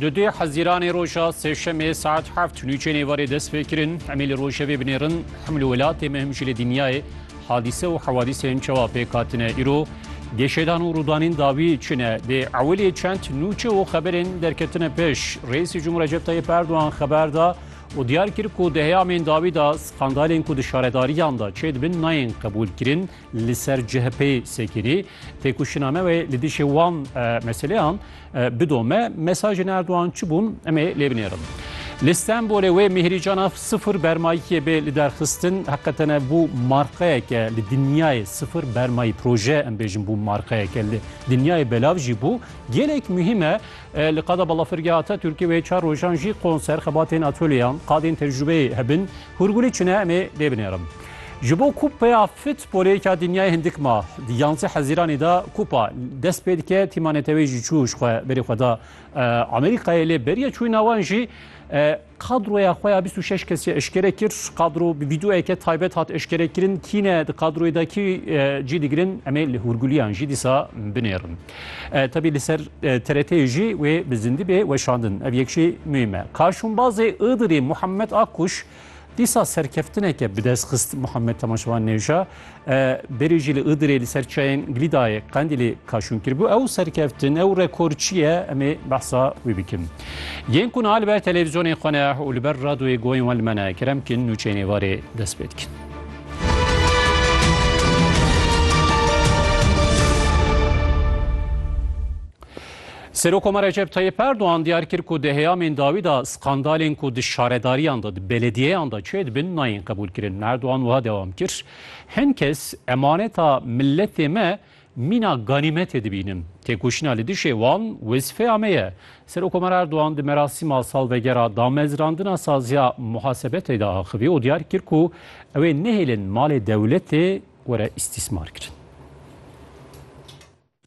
Di duyê Hezîranê roja Sêşemê saet heft nûçeyên êvarê dest pê kirin. Em ê li rojevê binêrin him li welatê me him jî li dinyayê hadîse û hewadîsên çawa pêk hatine. Îro gêşedan û rûdanîn dawî çi ne? Dê ewilê çend nûçe û xeberên derketine pêş. Reîsê Cumhur Recep Tayyip Erdogan xeber da û diyar kir ku di heyamên dawî de skandalên ku di şaredariyan de çêdibin nayên qebûlkirin. li ser CHP'ê sekirî, têkoşîna me wê li dijî wan meseleyan bidome, mesajên Erdogan çi bûn em ê lê binêrin. Li Stenbolê wê Mihirî Canaf sifir bermayîkê bê li derxistin heqetene bû marqeyeke li dinyayê sifir bermayî proje em bêjin bû marqeyeke li dinyayê belav jî bû gelek muhîm e li qada balafirgeha Atatürkê wê çar rojan jî konser xebatên atölyeyan qadên tecrübeyê hebin Hûrgulî çune em ê lê binêrim. Ji bo Kupeya Futbolê ya Dinyayê hindik ma di yanzeh Hezîranê de kupa dest pê dike. Tîma neteweyî jî çû ji xwe berê xwe da Amerîkayê lê beriya çûna wan jî kadroya xwe ya bîst û şeş kesî eşkere kir. Kadro bi vîdeoyeke taybet hat eşkerekirin. Kî ne di kadroyê de kî cî digirin em ê li hûrguliyan jî dîsa binêrin. Tebî li ser TRT'yê jî wê bi zindî bê weşandin. Ev yek jî muhîm e. Kaşûnbazê Iğdırî Muhammed Akkuş dîsa serkeftineke bi dest xist Muhammed Temaşevan Nêvja berê jî li Iğdırê li ser çayên Glîdayê Qendîlê kaşûn kiribû. Ew serkeftin, ew rekor çi ye em ê behsa wî bikin. Yên ku niha li ber televîzyonên xwe ne û li ber radoyê goyên wan li me ne, kerem bikin nûçeyên êvarê dest pê dikin. Serokoma Recep Tayyip Erdoğan diyar kir ku di heyamên dawî da skandalên ku di şaredariyan da di belediyeyan da çê dibin nayên qebûlkirin. Erdoğan wiha dewam kir, Hin kes emaneta milletê me Mîna ganîmetê dibînin. Têkoşîna li dijî wan wezîfeya me ye. Serokkomar Erdogan di merasîma salvegera damezrandina saziya muhasebetê de axivî û diyar kir ku ew ê nehêlin malê dewletê were îstîsmarkirin.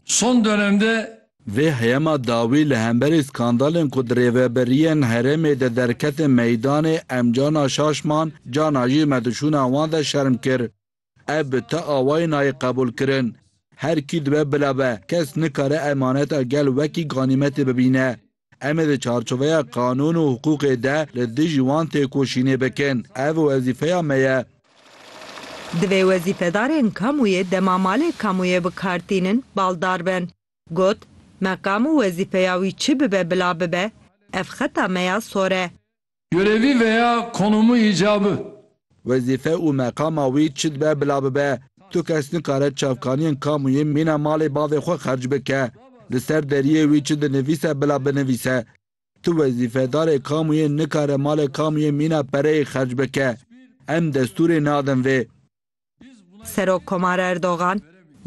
Son dönemde. Vê heyema dawî li hemberî skandalên ku di rêveberiyên herêmê de derketin meydanê, em cana şaşman, cana jî me di şûna wan de şerm kir. Ev bi ti awayî nayê qebûlkirin. Her kî dibe bila be, kes nikare emaneta gel wekî ganîmetê bibîne. Em ê di çarçoveya qanûn û hiqûqê de li dijî wan têkoşînê bikin. Ev wezîfeya me ye. Divê wezîfedarên kamûyê dema malê kamûyê bi kar tînin baldar bin. Got, Meqam û wezîfeya wî çi bibe bila bibe, ev xeta me ya sor e. Görevî veya konumu îcabı. Wezîfe û meqama wî çi dibe bila bibe, tu kes nikare çavkaniyên kamuyê mîna malê bavê xwe xerc bike, li ser deriyê wî çi dinivîse bila binivîse. Tu wezîfedarê kamuyê nikare malê kamuyê mîna pereyê xerc bike. Em destûrê nadin vê. Serokkomar Erdogan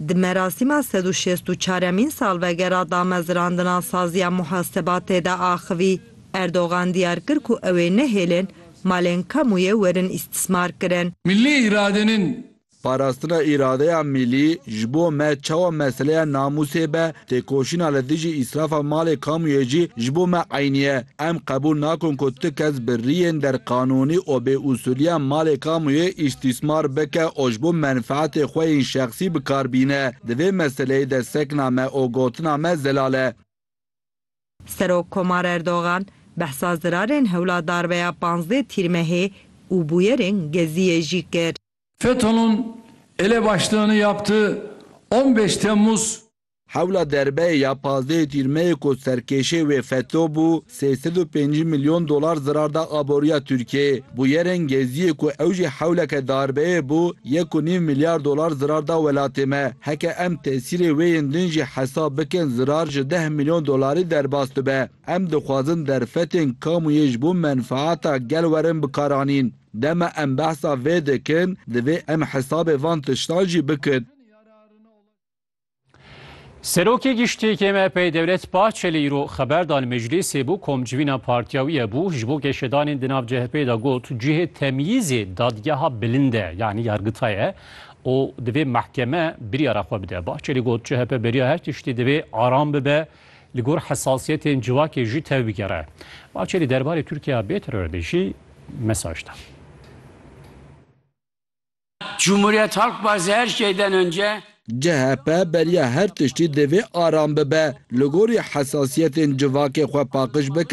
di merasîma sed û şêst û çaremîn salvegera damezrandina Saziya Muhasebatê de axivî. Erdogan diyar kir ku ew ê nehêlin malên kamûyê werin îstismarkirin. Millî îradenin. Parastina îradeya millî ji bo me çawa meseleya namûsê be, Têkoşîna li dijî îsrafa malê kamuyê jî ji bo me eynî ye. Em qebûl nakin ku tu kes bi riyên derqanûnî û bêusûliyan malê kamuyê îstîsmar bike û ji bo menfeetê xwe yên şexsî bi kar bîne. Di vê meseleyê de sekna me û gotina me zelal e. Serok Komar Erdogan behsa zirarên hewla darbeya panzdeh Tîrmehê û bûyerên Geziyê jî kir. FETÖ'nün elebaşlığını yaptığı on beş Temmuz. Hewla derbeyê ya pazdehê Tîrmeyê ku serkêşê wê FETÖ bû, sê sed û pêncî milyon dolar zirar da aboriya Tirkiyeyê. Bûyerên Geziyê ku ew jî hewleke darbeyê bû, yek û nîv milyar dolar zirar da welatê me. Heke em tesîrê wê yên din jî hesab bikin zirar ji deh milyon dolarî derbas dibe. Em dixwazin derfetên kamuyê ji bo menfaeta gel werin bikaranîn. Dema em behsa vê dikin, divê em hesabê van tiştan jî bikin. Serokê Giştî yê MHP'ê Dewlet Bahçelî îro xeber da li meclîsê bû kom civîna partiya wî ye bû ji bo geşedanên di nav CHP'ê de got cihê temyîzê dadgeha bilind e yanî yargita ye û divê mehkeme biryara xwe bide. Bahçelî got CHP beriya her tiştî divê aram bibe Li gor hesasiyetên civakê jî tevbigere. Bahçelî derbarê Tirkiya bê terorê jî mesaj da. Cumhuriyet Halk Partisi her şeyden önce. CHP beriya her tiştî divê aram bibe. Li gorî hesasiyetên civakê xwe paqij bike.